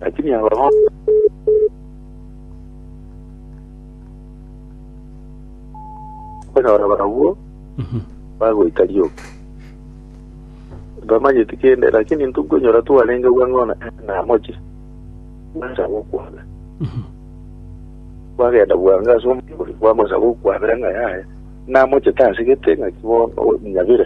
Lakini abagochi okonyora barabwo Mhm. bagoika rioka bamanyeti kende lakini ntokonyora twarenge bwang'ona namochi bwansa gokwana Mhm. bwagenda bwange ase omobori bwamosa gokwabera ng'a yaya namochete asegete ng'aki bono nyabire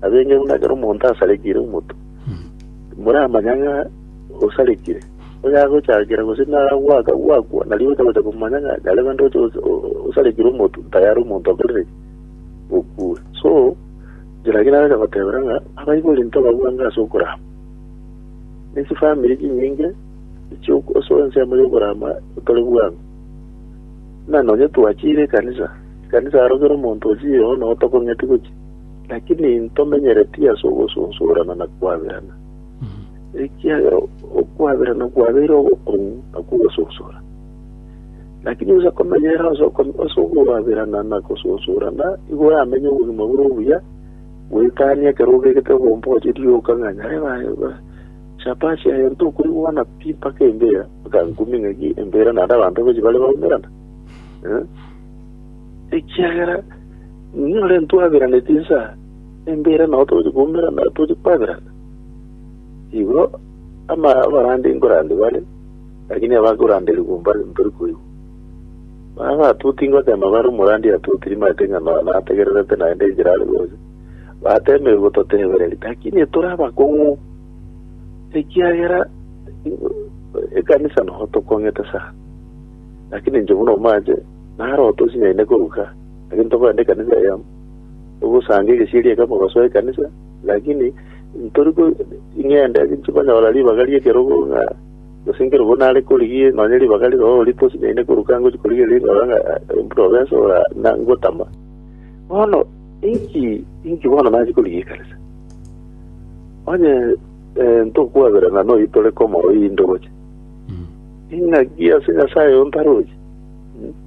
Abenge buna ekero omonto asarekire omoto, timoramanya ng'a osarekire. Oyo agochakera gose nagwaka gwakwa, nario ogocha gocha komanya ng'a nyare rende oche os- o- osarekire omotu, tayari omonto okorire ki? okure. So, inche naki nagocha gotebera ng'a abaibori ntobabwange ase okorama. Ne chifamiri chinyinge echio ase ensemo y'okorama tore bwango. Buna nonye twachire ekanisa, ekanisa aroro kera omonto ochire oo noo tokong'eti gochia. Lakini ntomenyeretie ase ogosunsurana na kwaberana, ekiagera okwaberana kwabeire ogokong'u na kw'ogosunsura. Lakini onsi akomenyerera ase oko- ase okwaberana na gosunsurana, igo oramenye obogima bore obuya, goetania ekero obegete obomboche rioka ng'a nyare ba- ba- shabashi aye ntokorigwa na pi mpaka embera, mpaka nkumi ng'aki embera naende abanto boichi bare baumerana. Eh? ekiagera nere ntwaberaneti inse embe ere nao togochia koumerana togochia kwaberana. Igo ama- abarande nkorande bare, lakini abakoranderigwa mbare ntori koigwa. Baba batoti ngotema bare omorandi atoti rimate ng'a no- nategererete naende enchera are gocha. Batemeire gototebereria, lakini tore abakong'u, ekiagera ekanisa nao tokong'ete sana, lakini inche buna omache Narote osinyaine koruga, lakini tokorenda ekanisa eyemo. Togosanga egesieri ekemo gosoa ekanisa, lakini ntori ing'ende chikonyora ribaga ri'ekerogo ng'a gose nkerogo nare korigia nonye ribaga riroro ri'ekerogo tosinyaine koruga ngochia korigia riroro ng'a buna obese ora ngotama. Bono inki inki bono nachia korigia ekanisa? Onye ntokwaberana noyio tore komorwa oyio indoche, ing'aki ase Nyasaye ontaroche?